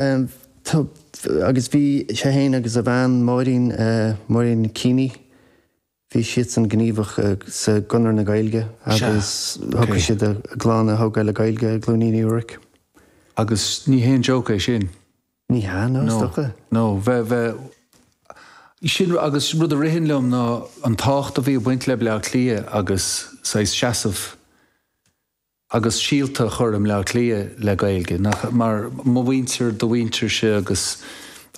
agus bhí sé féin agus a bhean Máirín, Máirín Keeney, bhí siadsan gníomhach sa gConradh na Gaeilge agus thogair siad a gclann a thógáil le Gaeilge i gCluainín Uí Ruairc. Agus ní haon joke é sin. Ní hea, ná is docha. No, bheith, bheith, sin agus rud a ritheann liom ná an tábhacht a bhí ag baint le Bleá Cliath agus saghas seasamh, agus síolta a chur i mBleá Cliath le Gaeilge, nach, mar, mo mhuintir, do mhuintirse agus,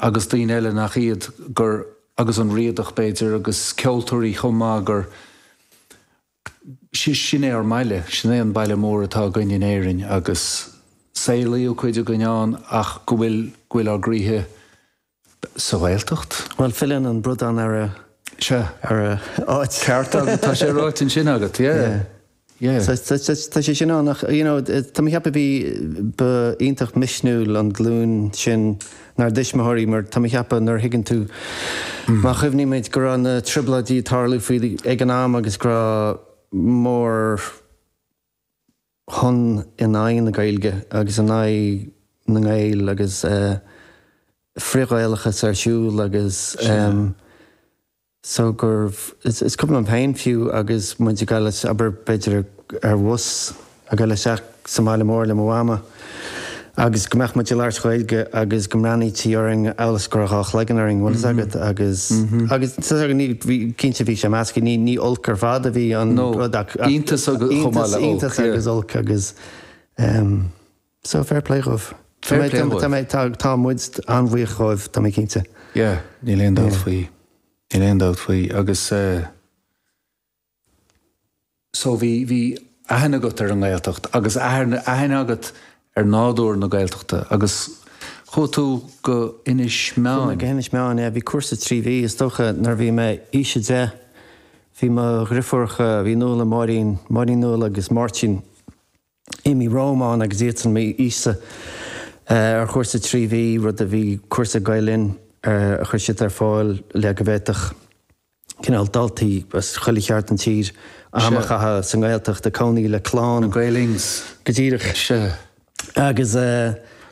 agus daoine eile nach iad, gur, agus an Riadach b'fhéidir, agus ceoltóirí chomh maith, gur, gur, sin é ár mbaile, sin é an baile mór atá againn in Éirinn agus saolaíodh cuid againn ann ach go bhfuil, go bhfuil ár gcroíthe, sa Ghaeltacht. Bhuel, filleann an bradán ar a. Sea. ar a áit. Ceart agat, tá sé ráite ansin agat, yeah, yeah. So, tá sé sin ann ach, you know, tá mé ag ceapadh bhí, ba iontach misniúil an glúin sin ár dtuismitheoirí mar tá mé ag ceapadh nuair a thuigeann tú, má chuimhnímid go raibh na Trioblóidí ag tarlú faoi, ag an am agus go raibh mór-, chun in aghaidh na Gaeilge agus in aghaidh na nGael agus frith-Ghaelachas ar siúl agus so gurbh is cuimhin liom féin fiú agus muid ag dul, abair, b'fhéidir ar bhus ag dul isteach sa mbaile mór le mo Mhama. agus go mbeadh muid ag labhairt Gaeilge agus go mbreathnaítí orainn amhail is go raibh dhá chloigeann orainn, bhfuil fhios agat. Agus, agus, tusa, agus ní, bhí, cinnte bhí sé measctha, ní, ní olc ar fad a bhí an No, rud ach, ach iontas agus chomh maith le olc, iontas yeah. agus olc agus ehm so fair play dhóibh. Fair play dhóibh. Tá mé, tá, tá muid an-bhuíoch dhóibh, tá mé cinnte. Yeah, níl aon dabht faoi. Níl aon dabht faoi agus eh, so bhí, bhí aithne agat ar an nGaeltacht agus aithne, aithne agat ar nádúr na Gaeltachta agus chuaigh tú go hInis Meáin. Chuaigh mé go hInis Meáin, yeah, bhí cúrsa trí mhí, is dócha nuair a bhí mé aois a deich, bhí mo dhriofúracha, bhí Nuala, Máirín, Máirín Nuala agus Máirtín, imithe romham agus iadsan níos sine ar chúrsa trí mhí, rud a bhí cúrsa Gael-Linn a chuir siad ar fáil le go bhféadfadh cineál daltaí as chuile cheard den tír am a chaitheamh sa nGaeltacht ag cónaí le clann go díreach. Agus.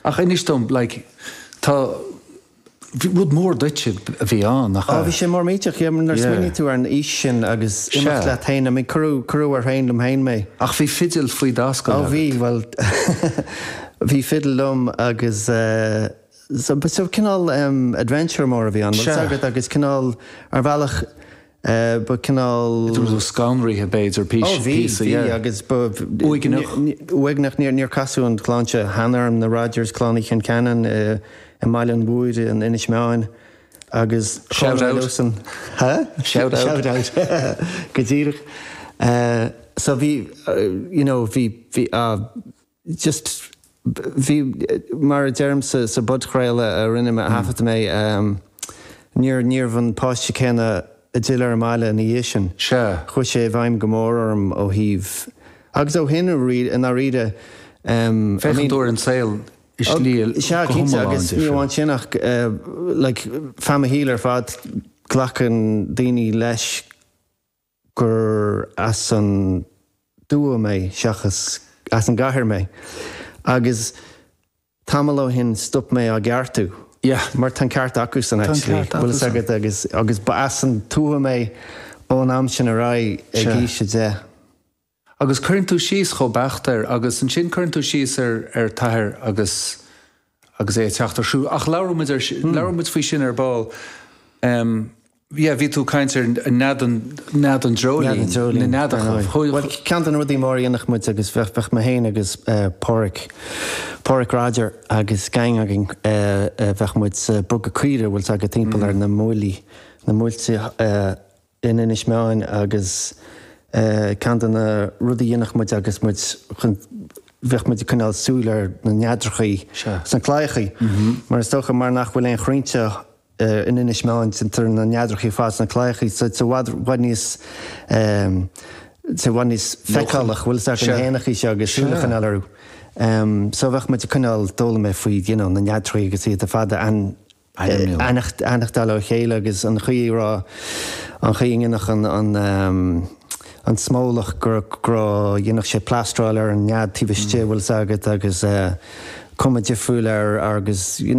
Ach anois dom, like, tá. Rud mór duitse a bhí ann, nach ea? Á, bhí sé mór millteach, yeah, nuair a smaoiníonn tú ar an aois sin agus imeacht leat féin, I mean, cuireadh, cuireadh ar thraein, liom féin, mé. Ach bhí fidil faoi d'ascaill agat. Á, bhí, bhuel, bhí fidil liom agus eh, so, cineál em, adventure mór a bhí ann, bhfuil 's agat, agus cineál, ar bhealach, Bhí, cineál, it was kind of scanraitheach b'fhéidir píosa dhe. Agus ba. Uaigneach. Uaigneach níor casadh an chlann seo cheana orm, na Rodgers, clann Uí Choncheanainn i mBaile an Mhúirne in Inis Meáin agus Shout out. Shout out. Shout out. Go díreach. So bhí, you know, bhí, bhí. just, bhí, mar a deirimse sa bpodchraoladh a rinne mé, a thaifead mé, níor, níorbh an páiste céanna a d'fhill ar an mbaile ina dhiaidh sin. Sea. Chuaigh sé i bhfeidhm go mór orm ó thaobh. Agus ó shin, i ndáiríre, i mean. Féachann tú ar an saol i slí go hiomlán difriúil. Sea, cinnte, agus ní amháin sin ach like feadh mo shaoil ar fad, glacann daoine leis, gur as an tuath mé seachas as an gcathair mé, agus tamall ó shin stop mé á gceartú. Yeah, mar tá an ceart acusan, actually, bhfuil fhios agat, agus, agus ba as an tuath mé ón am sin ar aghaidh ag aois a deich. Agus cuireann tú síos chomh beacht air, agus ansin cuireann tú síos ar ar t-athair agus, agus é ag teacht ar do thóir. Ach labhróidh muid ar, labhróidh muid faoi sin ar ball. Em. Yeah, bhí tú ag caint ar nead an, nead an dreoilín, na neadacha. Bhuel, ceann de na rudaí mór a dhéanadh muid agus bheadh, bheadh mé féin agus Páraic, Páraic Roger agus gang againn, bheadh muid sa, bogadh caoirigh, bhfuil 's agat timpeall ar na mbuailí, na muilte. in Inis Meáin agus ceann de na rudaí a dhéanfadh muid agus muid chun bheadh muid ag coinneáil súil ar na neadrachaí sna claíochaí mar is dócha mar nach bhfuil aon chrainnte in Inis Meáin déantar na neadrachaí ar fad sna claíochaí so i bhfad bhfad níos i bhfad níos feiceálaí bhfuil 's agat na héanachaí seo agus súil a choinneáil orthu so bheadh muid ag coinneáil d'fhoghlaim mé faoi you know na neadrachaí agus iad a aithneachtáil ó chéile agus an chaoi a raibh, an chaoi a ndéanfadh an smólach, go raibh, go raibh, dhéanfadh sé plástráil ar an nead taobh istigh, bhfuil fhios agat, agus cuma difriúil air agus, you know.